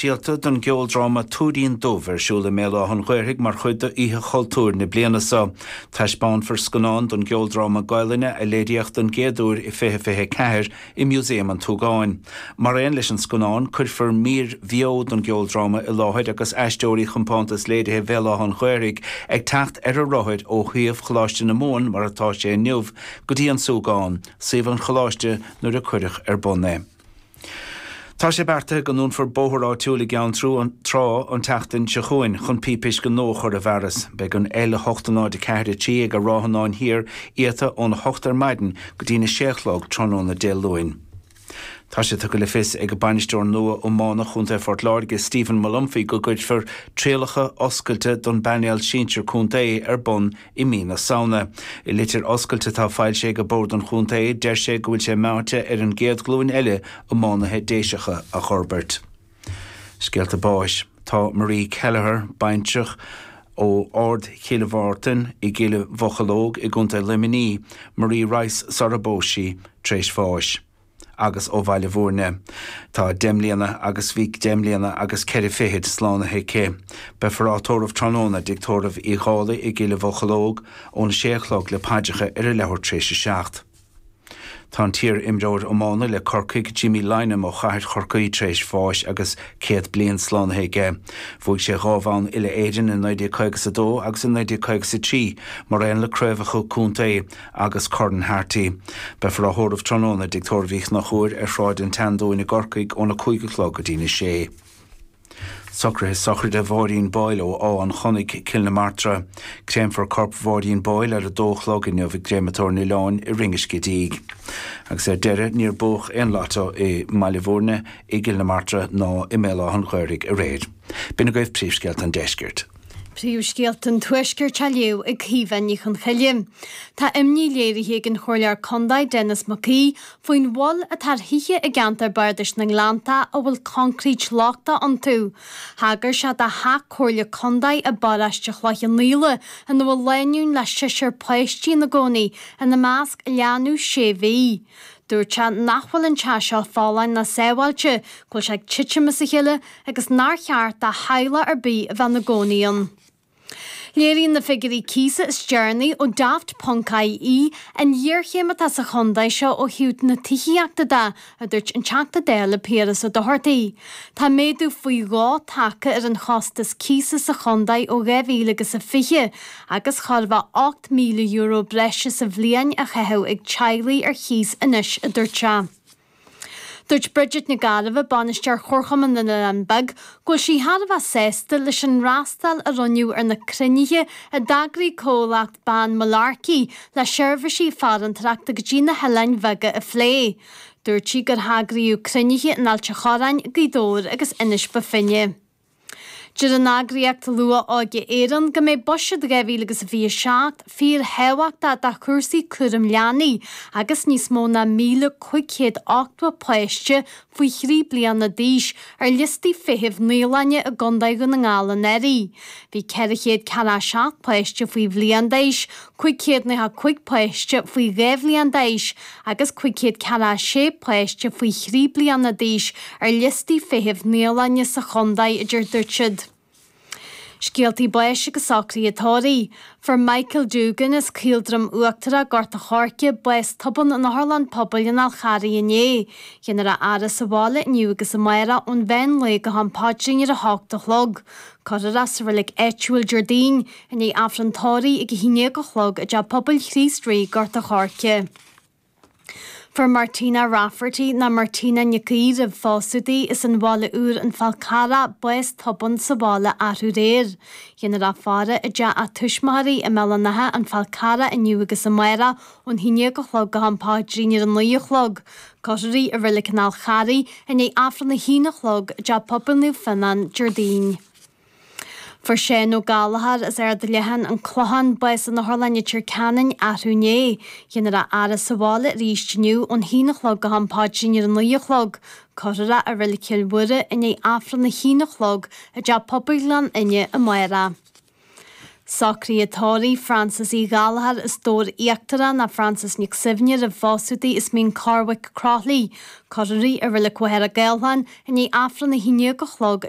Díolta don gceoldráma 'Túirín Dubh' ar siúl i mBéal Átha'n Ghaorthaidh mar chuid d'Oíche Chultúir na bliana seo. Taispeánfar scannán don gceoldráma Gaolainne a léiríodh don gcéad uair i 2024 i Músaem an tSúgáin. Mar aon leis an scannán, cuirfear mír bheo don gceoldráma i láthair agus Aisteoirí Chompántas Léirithe Bhéal Átha'n Ghaorthaidh ag teacht ar a rothair ó shuíomh Choláiste na Mumhan mar atá sé inniu, go dtí an Súgán, suíomh an Choláiste nuair a cuireadh ar bun é. Tá sé beartaithe go ndúnfar bóthar áitiúil i gCeann Trá an tseachtain seo chugainn chun píp uisce nua a chur i bhfearas. Beidh an L8043 ag an Ráthanáin Thiar iata óna hocht ar maidin go dtína sé a chlog tráthnóna Dé Luain. Tá sé tugtha le fios ag Bainisteoir nua Iomána Chontae Phort Láirge, Stephen Molumphy go gcuirfear trialacha oscailte don bpainéal sinsir contae ar bun I mí na Samhna. I litir oscailte atá foilsithe ag Bord an Chontae, deir sé go bhfuil sé meáite ar an gcéad ghlúin eile iománaithe Déiseacha a fhorbairt. Scéalta báis. Tá Marie Kelleher, baintreach ó Ard Chill Mhártain i gCill Mhocheallóg i gContae Luimnigh, Marie Rice sarar phós sí, tar éis bháis. agus ó Bhaile Mhúirne. Tá deich mbliana agus bhí deich mbliana agus ceithre fichid slánaithe aici. Beifear á tórramh tráthnóna i dTigh Tórraimh Uí Dhálaigh i gCill Mhocheallóg óna sé a chlog le paidreacha ar a leathuair tar éis a seacht. Tá an t-iar imreoir iomána le Corcaigh, Jimmy Lynam ó Chathair Chorcaí tar éis bháis agus céad bliain slánaithe aige. Bhuaigh sé dhá bhonn uile Éireann i 1952 agus i 1953 mar aon le craobhacha contae agus Corn Harty. Beifear á thórramh tráthnóna i dTigh Tórraimh Uí Chonchúir ar Shráid an tSeandúin i gCorcaigh óna cúig a chlog go dtí'n a sé. Socruithe sochraide Mháirín Boyle ó Áth an Chonnaidh, Cill na Martra. Créamfar corp Mháirín Boyle ar a dó a chlog inniu i gCréamatóir an Oileáin i Rinn an Scidígh. Agus ar deireadh níor buadh aon Lotto i mBaile Mhúirne, i gCill na Martra ná i mBéal Átha'n Ghaorthaidh aréir. B'in agaibh príomhscéalta an Deiscirt. Príomhscéalta an Tuaiscirt á léamh ag Caoimhe Ní Chonchoille. Tá imní léirithe ag an Chomhairleoir Condae Denis Mac Aoidh faoin mhoill atá ar thithe i gceantar Bardais na nGleannta a bhfuil concrete lochtach iontu. Thagair sé do theach Comhairle Condae i bParáiste Chloich Cheann Fhaola ina bhfuil lánúin le seisear páistí ina gcónaí, ina measc leanbh sé mhí. Dúirt sé nach bhfuil an teach seo folláin ná sábháilte, go bhfuil sé ag titim as a chéile agus nár cheart do theaghlach ar bith a bheith ina gcónaí ann. Léiríonn na figiúirí cíosa is deireanaí ó Daft.ie an ghéarchéim atá sa chontae seo ó thaobh na tithíochta de, a dúirt an Teachta Dála Piaras Ó Dochartaigh. Tá méadú faoi dhó tagtha ar an chostas cíosa sa chontae ó 2020, agus thart fá €8,000 breise sa bhliain á chaitheamh ag teaghlaigh ar chíos anois, a dúirt sé. Dúirt Bridget Nic Gairbheith, Bainisteoir Chomharchumann na nOileán Beag, go bhfuil sí thar a bheith sásta leis an fhreastal a rinneadh ar na cruinnithe a d'eagraigh Comhlacht Bane Mullarkey le seirbhísí farantóireachta go dtí na hoileáin bheaga a phlé. Dúirt sí gur heagraíodh cruinnithe in Ailt an Chorráin, Gaoth Dobhair agus Inis Bó Finne. Deir an eagraíocht Luath-Óige Éireann go mbeidh Buiséad 2027 'fíorthábhachtach' do chúrsaí cúram leanaí agus níos mó ná 1,580 páiste faoi thrí bliana d'aois ar liostaí feithimh naíolainne i gContae Dhún na nGall anuraidh. Bhí 447 páiste faoi bhliain d'aois, Cúig chéad nócha cúig páiste faoi dhá bhliain d'aois agus cúig chéad ceathracha sé páiste faoi thrí bliana d'aois ar liostaí feithimh naíolainne sa chontae a dúirt siad. Scéaltaí báis agus socruithe tórraimh. Fuair Michael Duggan as Caoldroim Uachtarach Gort a' Choirce bás tobann in otharlann pobail an Fháil Charraigh inné. Dhéanfar é a fhaire sa bhaile inniu agus amárach ón mheán lae go ham paidrín ar a hocht a chlog. Cuirfear é sa reilig áitiúil Déardaoin, I ndiaidh Aifreann Tórraimh ag 11 a chlog i dTeach Pobail Chríost Rí, Gort a Choirce. Fuair Martina Rafferty, nó Martina Nic Aoidh roimh phósadh di, as an Bhaile Úr, An Fál Carrach, bás tobann sa bhaile arú aréir. Dhéanfar í a fhaire i dteach a tuismitheoirí i mBéal an Átha, An Fál Carrach inniu agus amáireach ón 11 a chlog go ham paidrín ar an 9 a chlog. Cuirfear í i Reilig an Fháil Charraigh i ndiaidh Aifreann 1 a chlog i dTeach Pobail Naomh Fionán, Déardaoin. Fuair Seán Ó Gallchóir as Ard Leathan, An Clochán, bás in Otharlann Leitir Ceanainn arú inné. Dhéanfar é a fhaire sa bhaile arís inniu ón haon a chlog go ham paidrín ar a naoi a chlog. Cuirfear é i Reilig Chill Mhuire i ndiaidh Aifreann a haon a chlog i dTeach Pobail Ghleann Fhinne amárach. Socruithe tórraimh Frances Uí Ghallchóir as Dobhar Íochtarach, nó Frances Nic Suibhne roimh phósadh di as Mín Corrbhaic, Croithlí. Cuirfear í i Reilig Mhachaire Gathlán i ndiaidh Aifreann a haon déag a chlog i